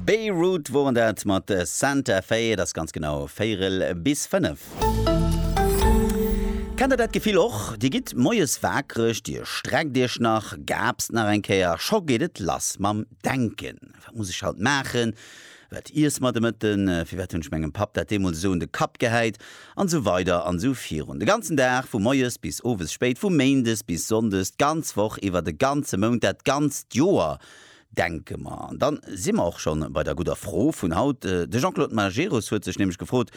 Beirut woren dat mat Santa Fe, et ass ganz genau véirel bis fënnef. Kennt der dat Gefill och? Dir gitt moies waakreg, dir streckt iech nach, gaapst nach eng Kéier a scho geet et lass mam Denken, Wat muss ech haut maachen? Wat iesse mer de Mëtten? Firwat hunn ech mengem Papp dat deemools esou un de Kapp gehäit? An esou weider an esou virun. De ganzen Dag, vu moies bis owes spéit, vu méindes bis sonndes, d'ganz Woch iwwer, de ganze Mount, dat ganzt Joer, denke mer. An dann si mer och scho bei der gudder Fro vun haut. De Jean-Claude Majerus huet sech nämlech gefrot,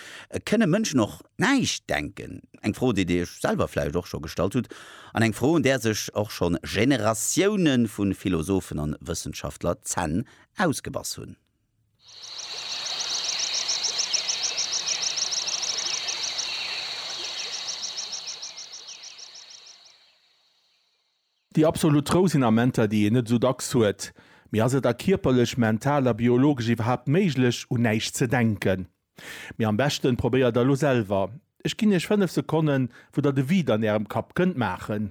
Kënne Mënschen och näischt denken? Eng Fro, déi Dir Iech selwer vläicht och scho gestallt hutt, an eng Fro, un där sech och scho Generatioune vu Philosophen a Wëssenschaftler d'Zänn ausgebass hunn. Déi absolut Rou sinn Amenter, déi een net esou dacks huet. Mee ass et da kierperlech, mental a biologesch iwwerhaapt méiglech, un näischt ze denken? Mee am beschten, probéiert der elo selwer. Ech ginn iech 5 Sekonnen, wou der de Vide an ärem Kapp kënnt maachen.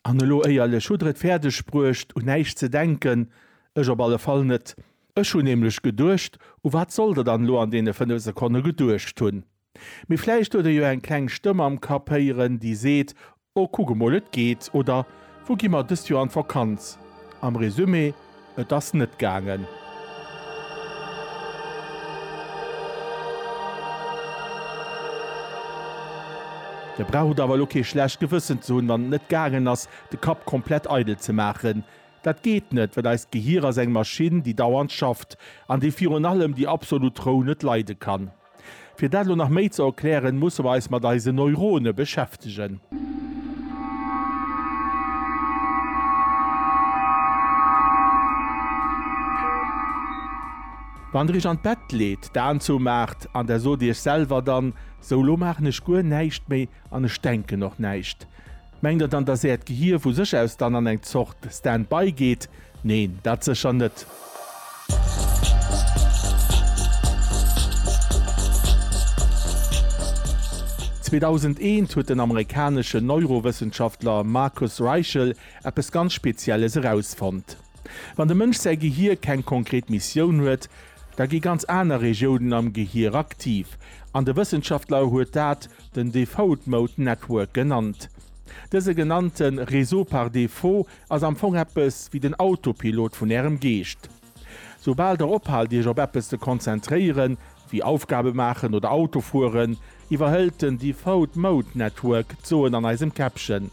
An elo éierlech, hutt der et fäerdeg bruecht, un näischt ze denken? Ech op alle Fall net. Ech hunn nämlech geduecht, u wat sollt der dann elo an deene 5 Sekonne geduecht hunn? Mee vläicht huet e jo eng kleng Stëmm am Kapp héieren, déi seet, Oh, kuck emol, et geet! Oder, Wou gi mer dëst Joer an d'Vakanz? Am Resumé, Et ass net gaangen. Dir braucht awer elo kee schlecht Gewëssen ze hunn, wann et net gaangen ass, de Kapp komplett eidel ze maachen. Dat geet net, well eist Gehier ass eng Maschinn, déi dauernd schafft an déi virun allem déi absolut Rou net leide kann. Fir dat elo nach méi ze erklären, musse mer eis mat eise Neurone beschäftegen. Wann der iech an d'Bett leet, d'Aen zou maacht an der sot iech selwer dann, Sou, elo maachen ech guer näischt méi an ech denken och näischt. Mengt der dann, dass Äert Gehier vu sech aus dann an eng Zort Stand-by geet? Neen, dat sécher net. Zweedausend-eent huet den amerikaneschen Neurowëssenschaftler Marcus Raichle eppes ganz Spezielles erausfonnt. Wann dem Mënsch säi Gehier keng konkret Missioun huet, Da gi ganz aner Regiounen am Gehier aktiv, an de Wëssenschaftler huet dat den Default Mode Network genannt. Dëse genannte Réseau par défaut ass am Fong eppes wéi den Autopilot vun Ärem Geescht. Soubal Der ophaalt Iech op eppes ze konzentréieren, wéi Aufgabe maachen oder Auto fueren, iwwerhëlt den Default Mode Network d'Soen an eisem Käppchen.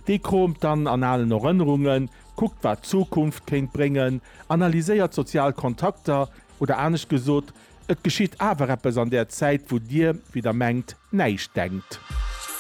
Dee kromt dann an alen Erënnerungen, Kuckt wat d'Zukunft kéint bréngen, analyséiert sozial Kontakter, oder anescht gesot, et geschitt awer eppes an där Zäit wou dir, wéi der mengt, näischt denkt.